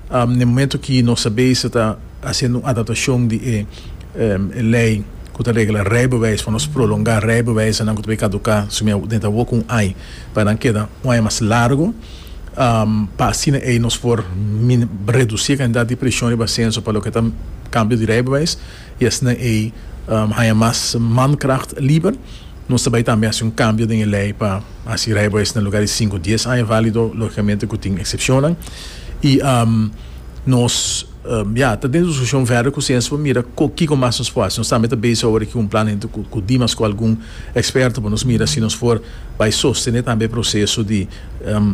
na e momento aki nos ta bezig ta haciendo un adaptacion di e ley cu ta regla rijbewijs pa nos prolonga rijbewijsnan cu ta por caduca sumi dentro awor cu un aña pa nan keda un aña mas largo pa asina ey nos por reduci e cantidad di presion riba censo pa loke ta cambio di rijbewijs y asina ey haya mas mankracht liber. Nos ta bai tambe hasi un kambio den e lei pa hasi rijbewijs na luga di sinku dies aña válido, lógikamente ku tin eksepshonnan. I nos ya ta den diskushon vèder ku siensia pa mira kiko mas nos por hasi. Nos tambe ta bezig awor aki un plan henter ku Dimas ku algun eksperto pa nos mira si nos por bai sostené tambe e proseso di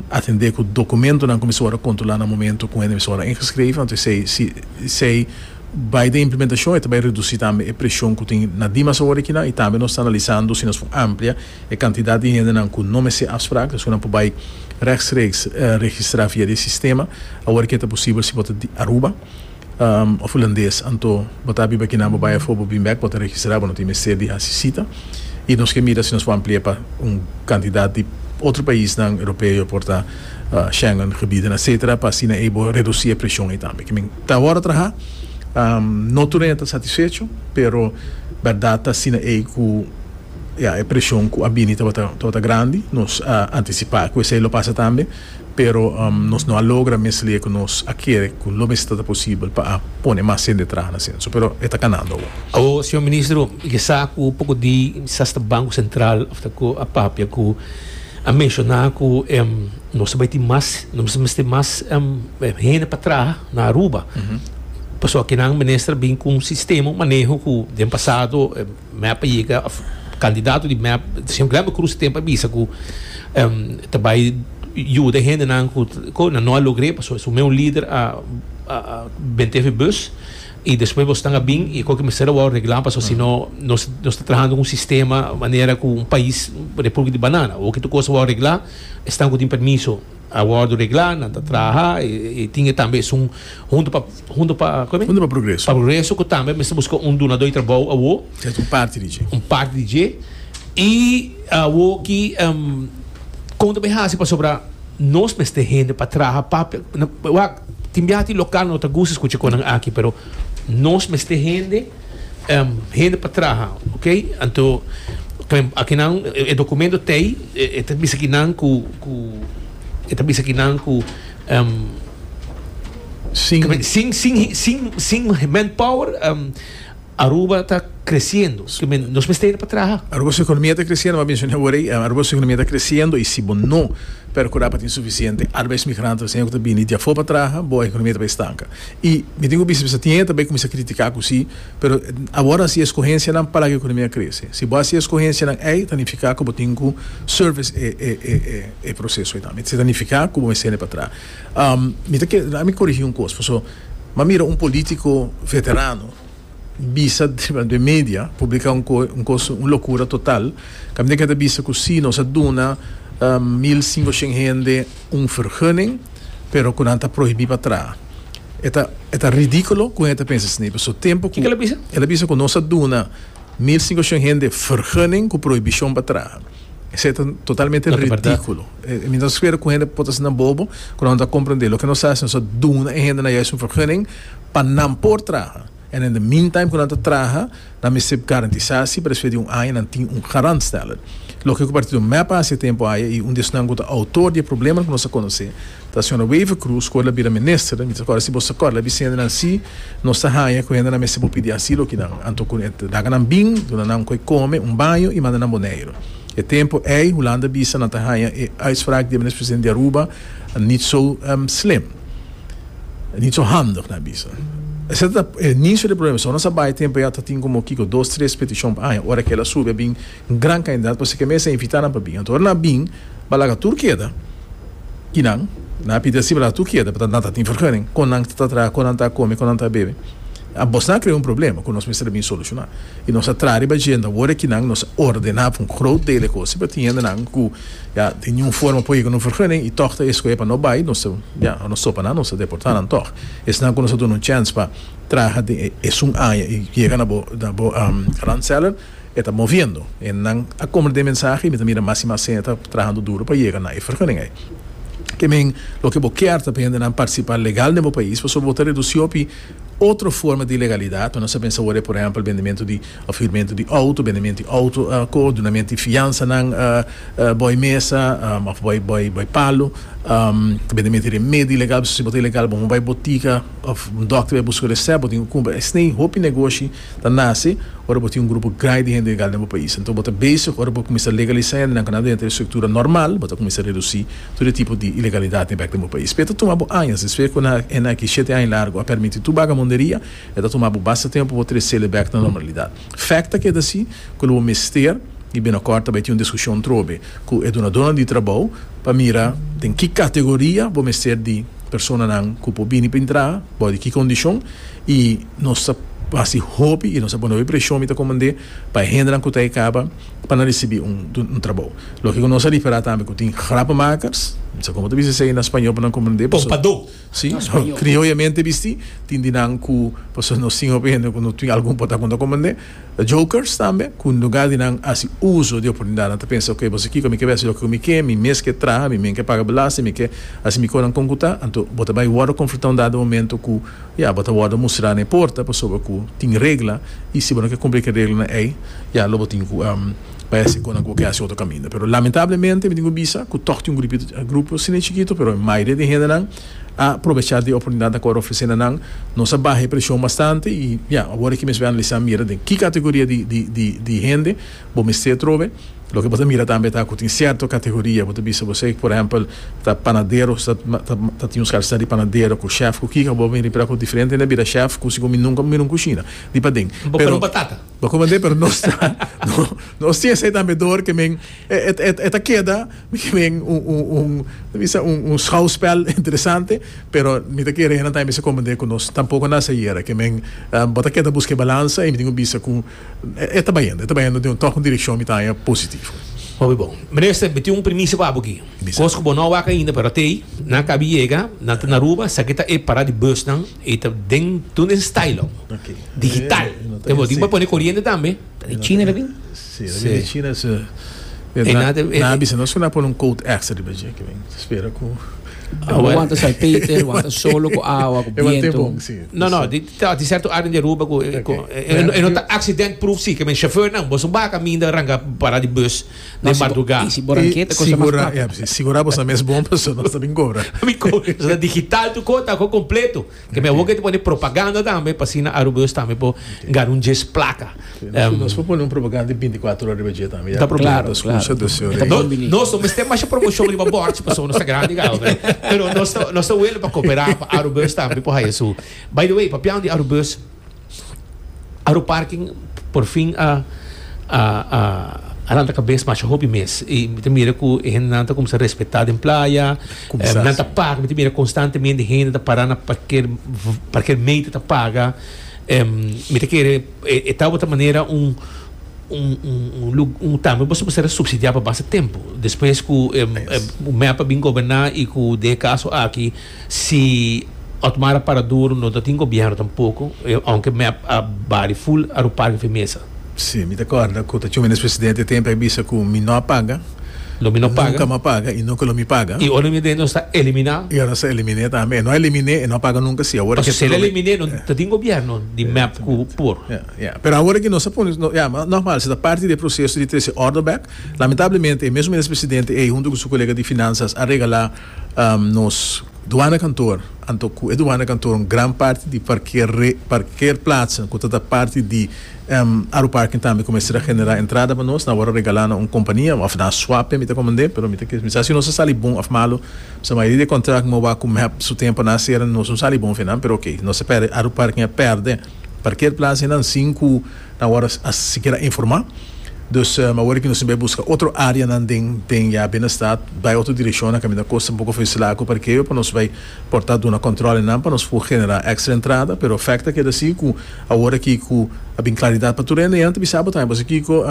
atendé ku dokumentonan ku mester wòrdu kontrolá na momentu ku hende mester wòrdu ingeskreve, anto esei si esei. Bai den implementashon e ta bai redusí tambe e preshon ku tin na dimas awor di kinan i tambe nos ta analisando si nos por amplia e kantidat di hendenan ku no mester afsprak ta esaki nan por bai rèkstreeks registrá via di e sistema awor ki e ta posibel si bo ta di Aruba òf Hulandes anto bo ta biba kinan bo bai afó bo bin bèk bo ta registrá bo no tin mester di hasi sita i nos ke mira si nos por amplia pa un kantidat di otro paisnan Europeo por ta Shengen gebieden etcetera pa asina ei bo redusí e preshon ei tambe. Ta awor traha, no tur enta satisfecho, pero berdad ta asina ey cu ya e presion cu a bini tabata grandi, nos a anticipa cu esey lo pasa tambe, pero nos no a logra mes loke nos a kere cu lo mester ta posibel pa a pone mas hende traha na censo, pero e ta canando awor. Awor, Señor Ministro, y e sa cu poco di Banco Central a papia cu a menciona cu e. Nos ta bai tin mas, nos ta mester mas hende pa traha na Aruba. Pasobra nan minister a bin ku un sistema, un maneho ku den pasado mep a yega, kandidato di mep, señor Glenn Cruz e tempu a bisa ku e ta bai yuda e hendenan ku kosnan. No a logr'é pasobra su mes un lider a bent'é e bus i despues bosnan a bin i koke mester a wòrdu reglá pasobra si no nos ta trahando ku un sistema manera ku un pais, Republik di Banana. Woke tur kos a wòrdu reglá. Esnan ku tin permiso a wòrdu reglá, nan ta traha i tin e tambe esun huntu pa huntu pa kòmen? Huntu pa Progreso. Pa Progreso ku tambe mester buska un dunadó di trabou awó. Sèt, un parti di dje. Un parti di dje. I awó ki kon ta bai hasi pasobra nos mester hende pa traha pa wak tin biaha tin lokal nan no ta gusta skucha kon nan aki pero nos mester hende. hende pa traha ok anto akinan e documento ta ey e ta bisa aki nan cu cu e ta bisa aki nan cu sin sin sin sin manpower Aruba ta creciendo escobie nos mester yete pa traha. Aruba su economia ta creciendo mas mencion'e awor ey Aruba su economia ta creciendo y si bo no percura pa tin suficiente arbeidsmigrantenan cu ta bini di afor pa traha bo economia ta bay stanca I mi tin ku bisa bisa tin e ta bai kuminsá kritiká ku si, pero awor hasi eskohensianan pa laga e ekonomia krese. Si bo hasi eskohensianan ei ta nifiká ku bo tin ku service e e e e e proseso ei tambe. Se ta nifiká ku bo mester ne patrá. Mi ta kere, ami korigí un kos pasobra mi a mira un polítiko veterano. bisa riba den media publica un coe un cos un locura total caminda que ta bisa cu si nos a duna mil cinco cien hende un vergunning pero cu nan ta prohibi pa traha e ta e ta ridiculo cu hende ta pensa asina pasobra tempo cu el a bisa cu nos a duna mil cinco cien hende vergunning cu prohibicion pa traha esey ta totalmente ridiculo. E mi ta spera ku hende por ta sinta bobo ku nan ta komprendé. Loke nos ta hasi, nos ta duna e hendenan yais un vergunning pa nan por traha. En in the meantime ku nan ta traha, nan mester garantisá si pa despues di un aña nan tin un garantstelling. Loke ku Partido mep a hasi e tempu aya i un di esnan ku ta outor di e probleman ku nos ta konosé ta señora Wever Croes ku ora el a bira minister. Mi ta kòrda si bo ta kòrda el a bisa hendenan si nos ta haña ku hendenan mester por pidi asilo kinan anto ku nan laga nan bin, duna nan ku e kome, un baño i manda nan Boneiru. E tempo ei Hulanda bisa nan ta haña e uitspraak di Minister-President di Aruba nit so slim, nit so handig, nan bisa. Esei ta e inicio di problema. Esou nan sa bai e tempo ei ata tin como kico dos, tres peticion pa haña. Ora akel a subi a bin gran cantidad pasobra ke mester invita nan pa bin. Anto ora nan a bin ba laga tur keda y nan nan a pidi asi ba laga tur keda, pasobra nan ta tin vergunning con nan ta traha, con nan ta a come, con nan ta a bebe. Abos nan a krea un problema ku nos mester a bin solushoná i nos a traha riba dje nda wor aki nan nos a ordená pa un grot deel e kos. Si pa tin hendenan ku ya di niun forma por yega un vergunning i tòg ta escohé pa no bai, nos ta ya nos topa nan, nos ta deportá nan tòg. Esnan ku nos a duna un chèns pa traha den e esun aña i yega na bo na bo Randseller e ta moviendo. Hendenan a komber den mensahe i mi ta mira mas i mas hende ta trahando duru pa yega na e vergunning ei. Ke men loke bo kier ta pa hendenan partisipá legal den bo pais pasobra bo ta redusí hopi. Otro forma di ilegalidat pa nos a pensa ora e por ehempel bendementu di of hurmentu di outo, bendemento di outo ko dunamento di fiansanan boy mesa of boy palu, bendemento di remedio ilegal pasobra si bo ta ilegal bo no bai botica of dokter bai buska resèp bo tin kumpra esnei hopi negoshi. Ta nase ora bo tin un grupo grandi di hende legal den bo pais. Anto bo ta bezig ora bo kuminsá legalisá hendenan ku nan ta denter e struktura normal, bo ta kuminsá redusí tur e tipo di ilegalidat di bèk den bo pais. Pero e ta tuma bo añas. Despues ku nan a hende aki shete aña largu a permití tur bagamonderia, e ta tuma bo basta tempu pa bo tresel e bèk na normalidad. Fèkt ta keda así ku lo bo mester, i binokòrt ta bai tin un diskushon trobe ku e dunadónan di trabou pa mira den ki kategoria bo mester di. personanan ku por bini pa intrá, bou di ki kondishon, i nos ta hasi hopi i nos ta pone hopi preshon, mi ta komand'é, pa e hendenan ku ta e kaba pa nan risibí un trabou. Loke ku nos a ripará tambe ku tin grapamakers, mi sa komo ta bisa esei na spañó pa nan komprend'é, paso, Pompadó. Sí, krioyamente bistí, tin di nan ku, paso nos tin hopi hende ku no tin algun potá ku no ta komprend'é. Jokers tambe, ku nluga di nan hasi uso di oportunidatnan ta pensa, Oke, bo sa kiko, mi ke bai hasi loke ku mi ke, mi mes ke traha, mi men ke paga belasting, mi ke hasi mi konan kon ku ta. Anto bo ta bai wòrdu konfrontá un dado momento ku ya bo ta wòrdu mustrá na e porta pasobra ku tin regla i si bo no ke kumpli ku e reglanan ei ya lo bo tin ku bai hasi konan ku bo ke hasi otro kaminda. Pero lamentablemente mi tin ku bisa ku tòg tin un grupito, grupo sine chikito, pero e mayoria di e hendenan. a probesha di oportunidad a Coro Oficina nan, nos a baha e presion bastante y ya, awor aki mes bo a analiza mira den ki categoria di di di di hende bo mester trobe, loke bo ta mira tambe ta cu tin cierto categoria bo ta bisa bo sey por ehempel ta panadero ta ta ta tin un scarsitad di panadero cu chef cu kiko bo a bini pera cu diferente hende a bira chef cu si cu mi nunca bo a mira un cushina di paden pero bo a comen den pero nos tin esey tambe door ke men. E ta keda bikinden un ta bisa un schouwspel interesante, pero mi ta kere nan ta mester komprende ku nos tampoko nan sa yera ke men bo ta keda buska e balansa i mi tin ku bisa ku e ta bayendo, e ta bayendo den tòg un direkshon mi ta haña positivo. Hopi bon. Minister, mi tin un primisa pa bo aki. Bisa. Kos ku bo no a wak ainda, pero te nan kabi yega, nan ta na Aruba, esaki ta e pará di busnan i ta den tur den Stylon. Oké. Digital. Te bo tin pa pone koriente tambe. Ta di China ta bin. Sí, ta bini China es nan a bisa nos ku nan a pone un coat extra riba dje ki men ta spera ku Bo wanta sai Peter wanta solo ku awa ku bientu. No no di ta di serto área di Aruba ku e no ta accident proof si ke men chauffeur nan boso ba kaminda ranga para di bus den madrugá. I si bo ranketa kosa mas practico. Sigura boso mes bon paso nos ta bin kobra. Nos ta digital tu kos ta ko kompleto. Ke me woke ta pone propaganda tambe pa sina Arubeus tambe por gana un djes plaka. Nos por pone un propaganda di binticuatro ora riba dje tambe. Ta problema. Claro, nos claro. dos señor. Ta no, combini. Nos no mester masha promoción riba bordje paso nos ta grandi gao. Pero nos ta nos ta wele pa cooperar pa Arubeus tambe por haya su. By the way, papian di Arubeus. Aeroparking por fin a a lanta kabes masha hopi mes i mi ta mira ku e hendenan ta kumsa respetá den playa nan ta paga mi ta mira konstantemente hende ta pará na parker parker meter ta paga mi ta kere e tabata manera un un un lu un tambe boso por ser supsidiá pa basta tempu despues ku mep a bin goberná i ku de e kaso aki. Si Otmar a para duru no ta tin gobierno tampoco, aunke mep a bali full Aruparque fi mesa. Si, mi ta corda cu ta Chuminez presidente tempo e a bisa cu mi no a paga, Lo mi no paga. nunca mi a paga y nunca lo mi paga. Y ora mi den nos ta elimina. Y ora nos ta elimine tambe. E no a elimine, e no a paga nunca si awor Paso si el a elimine no ta tin gobierno di mep cu por. Ya, ya. Pero awor aki nos a pone, ya, ma normal si ta parti di e proceso di trece e ordo bek, lamentablemente e mesun Minez presidente ey hunto cu su colega di Finanzas a regala. Nos duanakantoor, anto ku e duanakantoor un gran parti di parkeerplaatsen ku ta ta parti di aeroparken tambe ku mester a generá entrada pa nos, nan wòrdu regalá na un kompania òf na swape, mi ta komend'é, pero mi ta kier bisa si nos a sali bon òf malu, pasobra mayoria di e kontrakt moa wak ku mep su tempu a na sera, nos no sali bon fin nan, pero oke, nos a pèrdè aeroparken, a pèrdè parkeerplaatsen nan sin ku. Nan awor a sikiera informa. Dus mi awor ki nos tin bai buska otro areanan den den ya Binnenstad, bai otro direkshonnan kaminda kos ta un poko frisilá ku parkeo pa nos bai por ta duna kòntròlenan pa nos por generá èkstra entrada. Pero fèkt a keda asi ku awor aki ku a bin klaridat pa tur hende ya nan ta bisa bo tambe pasobra kiko?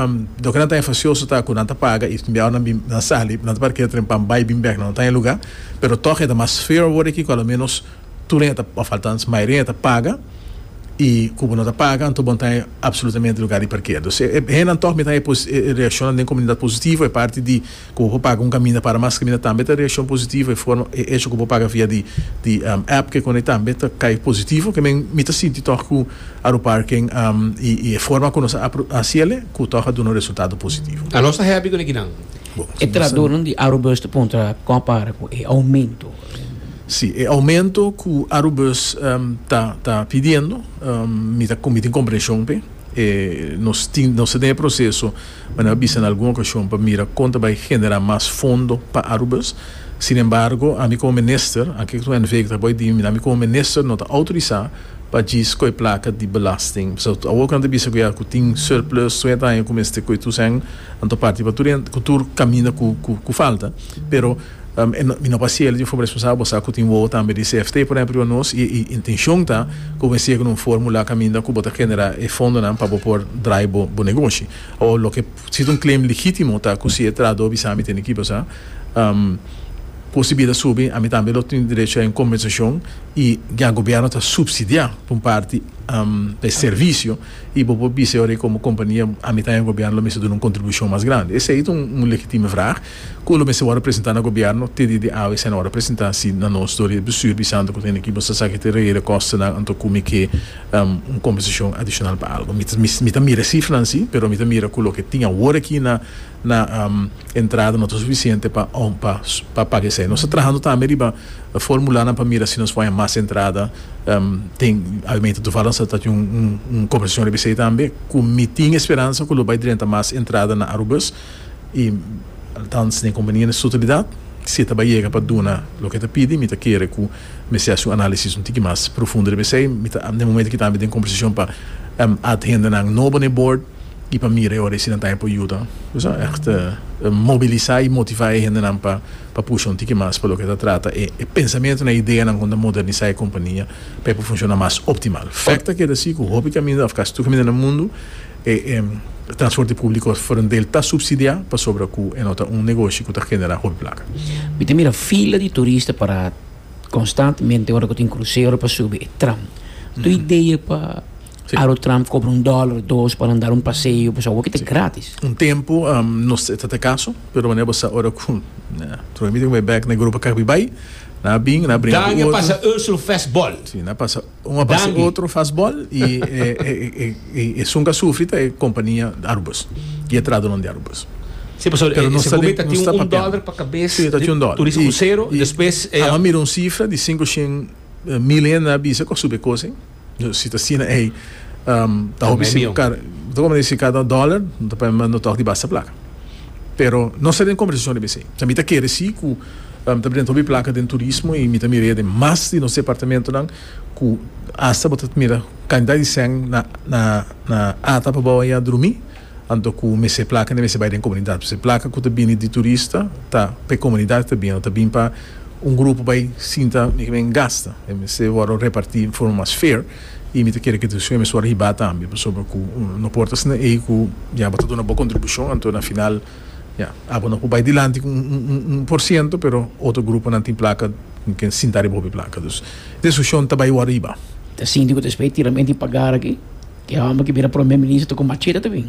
Loke nan ta enfasioso ta ku nan ta paga i también awor nan bin nan sali nan ta parkea tren p'an bai i bin bèk nan no taña lugá. Pero tòg e ta mas feo awor aki ku aloménos. tur hen ta of althans mayoria hen ta paga y cu bo no ta paga anto bo no ta absolutamente lugar di parkera dus e hennan toch mi ta haña e reacciona den comunidad positivo e parti di cu bo por paga un caminda para mas caminda tambe ta reaccion positivo e forma e hecho cu bo paga via di di app ki econa tambe ta cay positivo ke men mi ta sinti toch cu Aroparken y y e forma cu nos a haci ele cu toch a duna un resultado positivo. A nos ta happy cu neki nan. E tradoren di Arobus ta puntra con a para cu e aumento. Si, e aumento cu Arubus ta pidiendo, mi ta con mi tin comprension p'e. Nos tin, nos ta den e proceso, mane a bisa na algun ocasion, pa mira con ta bay genera mas fondo pa Arubus. Sin embargo, ami como Minister, anke cu NV ta bay di mi, ami como Minister no ta autoriza pa djis coy placa di belasting. Pasobra tur awor cu nan ta bisa cu ya cu tin surplus trenta aña cu mester coy tur cen, nan ta parti pa tur hende, cu tur caminda cu falta, pero. Mi no pasia el di un forma responsabel, bo sa ku tin wowo tambe di CFT, por ehèmpel riba nos, i e intenshon ta ku bo siga ku un fórmula kaminda ku bo ta genera e fondonan pa bo por drai bo negoshi. Awo loke sido un claim legítimo ta ku si e trahadó bisa mi tene kiba sa ku si bida subi ami tambe lo tin derecho a un kompensashon i ya gobièrnu ta supsidiá pa un parti pa e servisio i bo por bisa yo komo kompania ami ta ya gobièrnu lo mester duna un kontribushon mas grandi. Esei ta un legitime vrag. Cu lo mester worde presenta na Gobierno te di di awe esei na worde presenta si na nos dor di bestuur bisando cu ta hende ki bo sa sa ki ta rehele kostennan anto cu mi ke un compensacion adicional pa algo mi mi ta mira e cifranan si pero mi ta mira cu loke tin awor aki na na entrada no ta suficiente pa pa pa paga esei nos ta trahando tambe riba formulanan pa mira si nos por haña mas entrada tin aumento toevallig nos ta ta tin un compensacion riba esei tambe cu mi tin esperansa cu lo bay drenta mas entrada na Aruba. I althans den conveniente sutilidad, si e ta bai yega pa duna loke e ta pidi, mi ta kere cu mester haci un analisis un tiki mas profundo riba esey. Mi ta den momento aki tambe den conversacion pa add hendenan nobo na e board y pa mira e ora y si nan ta haña por yuda, bisa, echt mobilisa y motiva e hendenan pa pa pusha un tiki mas pa loke ta trata e e pensamientonan, e ideanan con ta modernisa e compania pa e por funciona mas optimal. Fect ta keda si cu hopi caminda of casi tur caminda na mundo, E transporte públiko for un del ta supsidiá pasobra ku e no ta un negoshi ku ta generá hopi plaka. Mi ta mira fila di turista pará konstantemente ora ku tin krusero pa subi e tram. Tu idea pa Aerotram kobra un dòler, dos pa nan dar un paseo boso awor ki ta grátis. Un tempu no e ta ta kaso, pero manera bo sa ora ku Troy mi ta ku mi bèk na Europa kak mi bai, nan a bin, nan a bringa ku otro. Danja pasa Ursel Festbal. Si, nan a pasa. Un a pasa otro fastball y e sun ka sufri ta e compania Arubus y e tradonan di Arubus. Si, pasobra e segunda mita tin un dollar pa cabes di Turismo Crucero y despues e. Anda mira un cifra di cinco shen mil hende a bisa cu a subi e cos ey. Si ta asina ey ta hopi si car, ta como ta dici cada dollar no ta pabia mas no ta hopi di basta placa. Pero nos ta den kombersacion riba esey. Mi ta kere si ku mi ta presenta hopi plaka den turismo y mi ta mira ya den mas di nos departamentonan ku hasta bo ta mira kantidat di sèn na ata pa bou ayan drumi. Anto ku mester plakanan mester bai den komunidat. Pasobra plaka ku ta bini di turista ta p'e komunidat ku ta bini. No ta bini pa un grupo bai sinta men gasta. Mester wòrdu reparti den forma mas fair. Y mi ta kere cu e decision mester wor hibá tambe, pasobra cu no por ta asina ey cu ya bo ta duna bo contribucion, anto na final ya abo no por bay dilanti cu un por ciento, pero otro gruponan tin placa, tin ken sinta riba hopi placa. Dus e decision ta bay wor hibá. Ta sinti cu ta esplei tira mente y pagar aki? Ki homber ki bira prome minister ta con machete ta bini.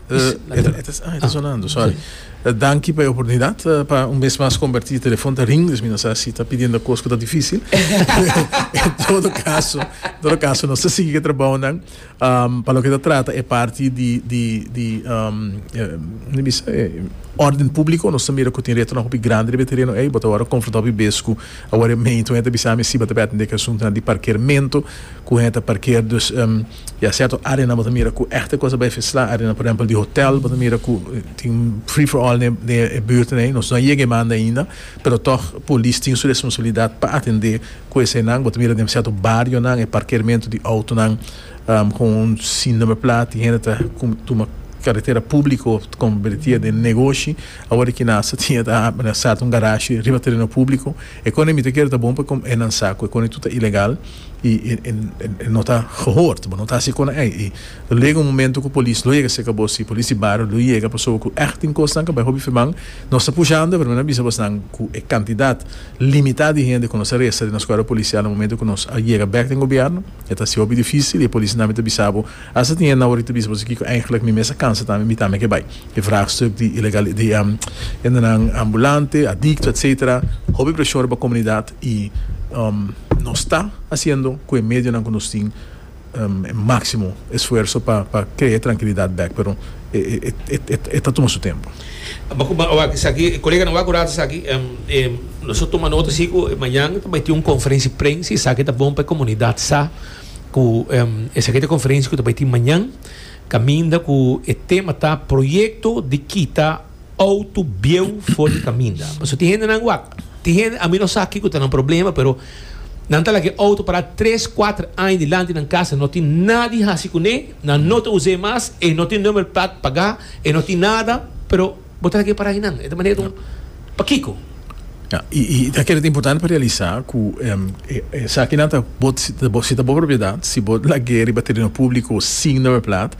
Danki pa e oportunidat pa un bes mas kombertí e telefòn ta ring, dus mi no sa si ta pidiendo kos ku ta difísil. En todo kaso, en todo kaso nos ta sigui ku e trabounan. Pa loke ta trata e parti di di di kiko mi bisa? Órden públiko nos ta mira ku tin retonan hopi grandi riba e tereno ei. Bo ta wòrdu konfrontá hopi bes ku awor e meintu. Hende ta bisa ami si bo ta p'e atendé ku e asuntunan di parkermentu, ku hende ta parker. Dus. Ya cierto area nan bo ta mira cu echte cosa bay fisla area nan por ehempel di hotel bo ta mira cu tin free for all den e buurten ey nos no a yega e banda ainda pero toch polis tin su responsabilidad pa atende cu esenan bo ta mira den cierto bario nan e parkeermento di auto nan con un sin number plaat tin hende ta tuma carretera publico of ta conbertia den negoshi awor e kinasa tin e ta a sarta un garashi riba tereno publico econe mi ta kere ta bon pa enan sa cu econe tur ta ilegal. y e no ta gehoord, bo no ta haci cona ey. Y lo llega un momento cu polis lo yega cerca bo, si polis di bario lo yega, pasobra cu echt tin cosnan cu bay hopi feman, nos ta pushando, pero mi na bisa bosanan cu e cantidad limita di hende cu nos a resta den nos cuerpo policial na momento cu nos a yega bek den gobierno, e ta haci hopi dificil y e polisnan mi ta bisa bo, hasta tin hende nan worita bisa bo si kico eigenlijk mi mes a cansa tambe, mi tambe a ke bay. E vraagstuk di ilegali, di hendenan ambulante, adicto, etcetera, hopi presion riba comunidad, I nos ta hasiendo ku e medionan ku nos tin e máksimo esfuerso pa krea e trankilidat bèk, pero e ta tuma su tempu. Koleganan, wak oranta esaki, nos a tuma nota si ku mañan ta bai tin un konferensia prens, i esaki ta bon pa e komunidat sa ku esaki ta e konferensia ku ta bai tin mañan, kaminda ku e tema ta proyekto di kita. Auto bieu for di kaminda. Pasobra tin hendenan wak. Tin hende, a mi no sa kiko ta nan problema, pero nan ta laga e auto pará tres, kuater aña dilanti nan kasa, no tin nadie hasi kuné, nan no ta us'é mas, e no tin number plate pagá, e no tin nada, pero bo ta laga e pará einan. E ta manera un, pakiko? Ya, i i ta kere ta importante pa realisá ku e esakinan ta bo si ta bo propiedat, si bo lag'é riba tereno públiko sin number plate,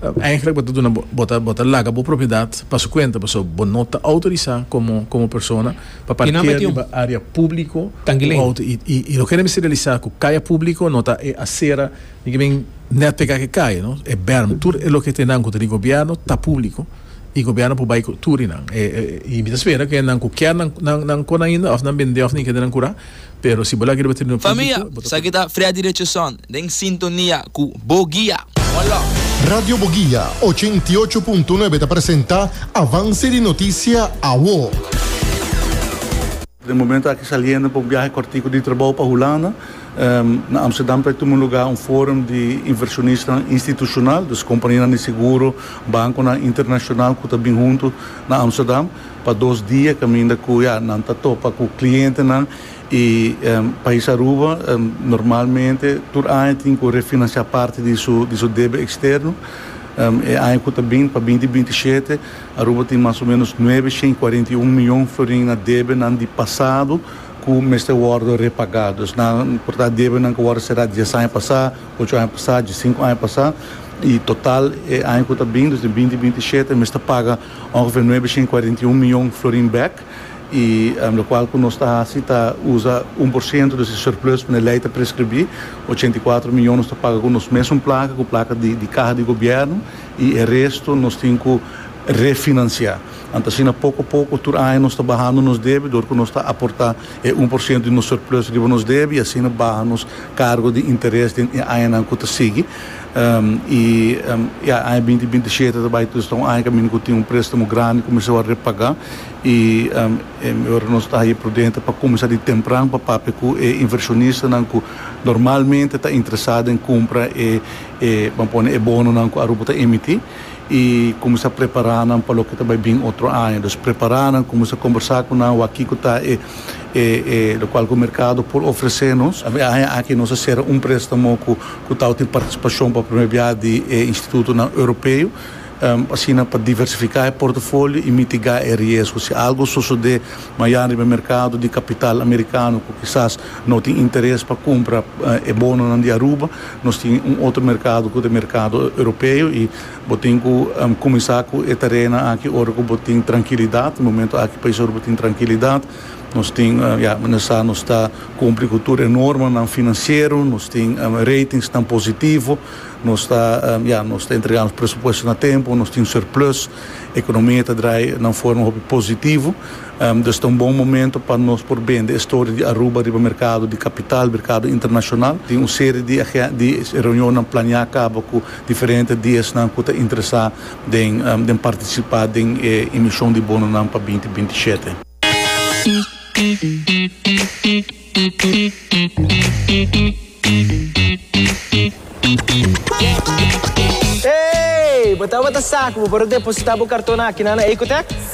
Eigenlijk bo ta duna bo ta laga bo propiedad pa su cuenta paso bo no ta autorisa como persona pa parkeer riba area publico cu auto y loke nan mester realisa cu caya publico no ta e acera ni ki men net pega cu e caya no e berm tur e loke tenan cu ta di gobierno ta publico y gobierno por bay cu tur y nan y mi ta spera cu e nan cu kier nan cu nan ainda of nan bende of nan kende nan cura Pero si bo laga riba trineo publico, bo ta Familia, esaki ta Freddy Richardson den sintonia cu Boguia. One love. Radio Boguia ocho i ocho punto nuebe ta presenta Avance di Noticia Awo. Den momento aki saliendo pa un biahe cortico di trabou pa Hulanda. Na Amsterdam ta tuma lugar un forum di inversionistan institucional, dus companianan di seguro, banconan internacional cu ta bin hunto na Amsterdam. Pa dos dia caminda cu ya nan ta topa cu clientenan y Pais Aruba normalmente tur aña tin cu refinancia parti di su di su debe externo. E aña cu ta bin pa binti binti shete Aruba tin mas o menos nuebe shen cuarenta y un miyon florin na debenan di pasado cu mester wordo repagá. Dus nan por ta debenan cu wordo será dies aña pasá, ocho aña pasá, diesinco aña pasá y total e aña cu ta bin, dus di binti binti shete mester paga. Ongeveer nuebe shen cuarenta i un mion florin bek y locual cu nos ta haci ta uza un por ciento di su surplus pa e ley ta prescribi, ochenta i cuatro mion nos ta paga cu nos mesun placa, cu placa di caha di gobierno y e resto nos tin cu refinancia. Anto asina poco a poco tur aña nos ta bahando nos debe dor cu nos ta aporta e un por ciento di nos surplus riba nos debe y asina baha nos cargo di interes den e añanan cu ta sigui. I ya, aña binti binti shete ta bai tur, ta un aña kaminda ku tin un prestamo grandi ku mi sa wòrdu repagá. I mi ora nos ta haña prudente pa kuminsá di tempran pa papia ku e invershonistanan ku normalmente ta interesá den kumpra e e ban pone e bononan ku Aruba ta emití i kuminsá prepará nan pa loke ta bai bin otro aña. Dus prepará nan, kuminsá kombersá ku nan, wak kiko ta e. e e lokual ku merkado por ofresé nos. Aña aki nos a sera un préstamo ku ku tawtin partisipashon pa promé bia di e institutonan europeo, asina pa diversifiká e portofolio i mitigá e riesgo si algu sosodé mañana riba e merkado di kapital amerikano ku kisas no tin interes pa kumpra e bononan di Aruba. Nos tin un otro merkado ku ta e merkado europeo i. Bo tin cu cuminsa cu e terena aki ora cu bo tin trankilidad. Momento aki país ora bo tin trankilidad. Nos tin, ya, meneer sa nos ta cumpli cu tur e normanan financiero. Nos tin ratingsnan positivo. Nos ta, ya, nos ta entrega nos presupuestonan a tempo. Nos tin surplus. Economia ta draai na un forma hopi positivo. Dus ta un bon momento pa nos por bende e storia di Aruba riba mercado di capital, mercado internacional. Tin un serie di di reunionnan plania caba cu. Diferente di esnan ku ta interesá den partisipá den e emishon di bononan pa binti binti i shete. Ey! Bo tabata sa ku bo por a depositá bo karton akí na Ecotech?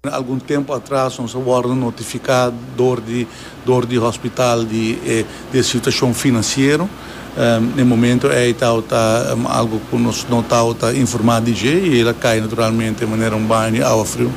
Algun tempu atras nos a wòrdu notifiká dor di dor di hospital di e situashon finansiero. E momento ei tabata algu ku nos no tabata informá di dje i el a kai naturalmente manera un baño di awa friu.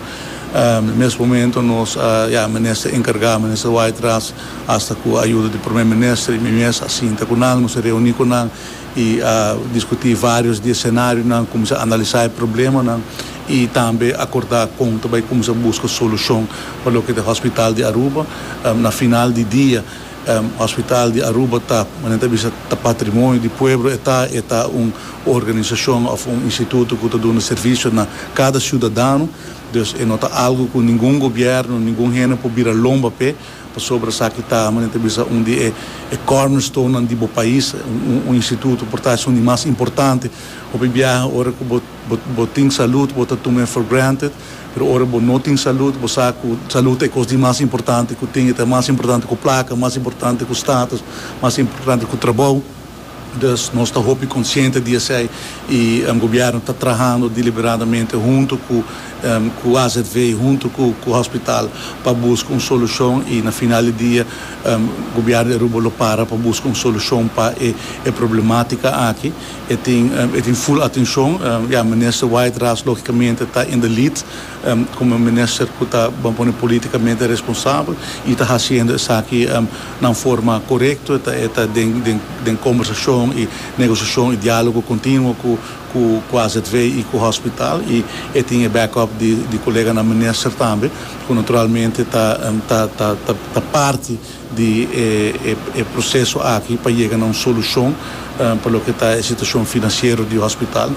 Mes momento nos a ya minister enkargá minister Wytras hasta ku ayuda di Prome Minister i mi mes a sinta ku nan, nos a reuní ku nan. E a diskutí vários di e senarionan, kuminsá analisá e problemanan i tambe akordá kon ta bai kuminsá buska solushon pa loke ta e Hòspital di Aruba. Na final di dia, Hòspital di Aruba ta, men a ta bisa, ta patrimonio di pueblo e ta, e ta un organisashon òf un instituto ku ta duna servisio na kada siudadano, dus e no ta algu ku ningun gobièrnu, ningun hende por bira lomba p'e. Pasobra esaki ta, manera ta bisa, un di e cornerstonenan di bo pais, un instituto por ta esun di mas importante. Hopi biaha ora cu bo bo tin salud bo ta tumae for granted, pero ora bo no tin salud bo sa cu salud ta e cos di mas importante cu tin, e ta mas importante cu placa, mas importante cu status, mas importante cu trabou. Dus nos ta hopi konsiente di esei i Gobierno ta trahando diliberadamente huntu ku azv i huntu ku hospital pa buska un solushon i na final di dia Gobierno di Aruba lo para pa buska un solushon pa e problematika aki. E tin ful atenshon. Ya, Minister White Ras logikamente ta in the lead komo e minister ku ta ban pone politikamente responsabel i ta hasiendo esaki na forma korekto e ta e ta den den den kombersashon i negosiashon i dialogo kontinuo ku ku ku azv i ku hospital i e tin e back up di di koleganan minister tambe ku naturalmente ta ta ta ta parti di e proseso aki pa yega na un solushon pa loke ta e situashon finansiero di hospital.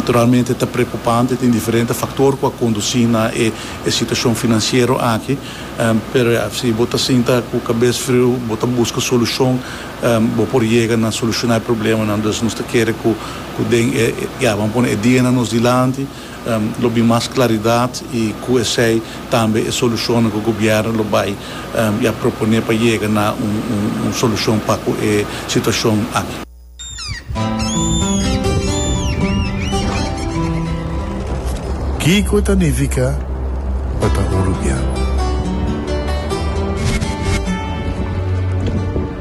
Realmente ta preokupante, tin diferente faktor ku a kondusí na e situashon finansiero aki, pero ya, si bo ta sinta ku kabes friu, bo ta buska solushon, bo por yega na solushoná e problemanan. Dus nos ta kere ku den e, ya, bo a pone e dianan nos dilanti. Lo bin mas claridad y cu esey tambe e solucionnan cu gobierno lo bay y a propone pa yega na un solucion pa cu e situacion aki. Kico ta nifica pa ta Uruguiano?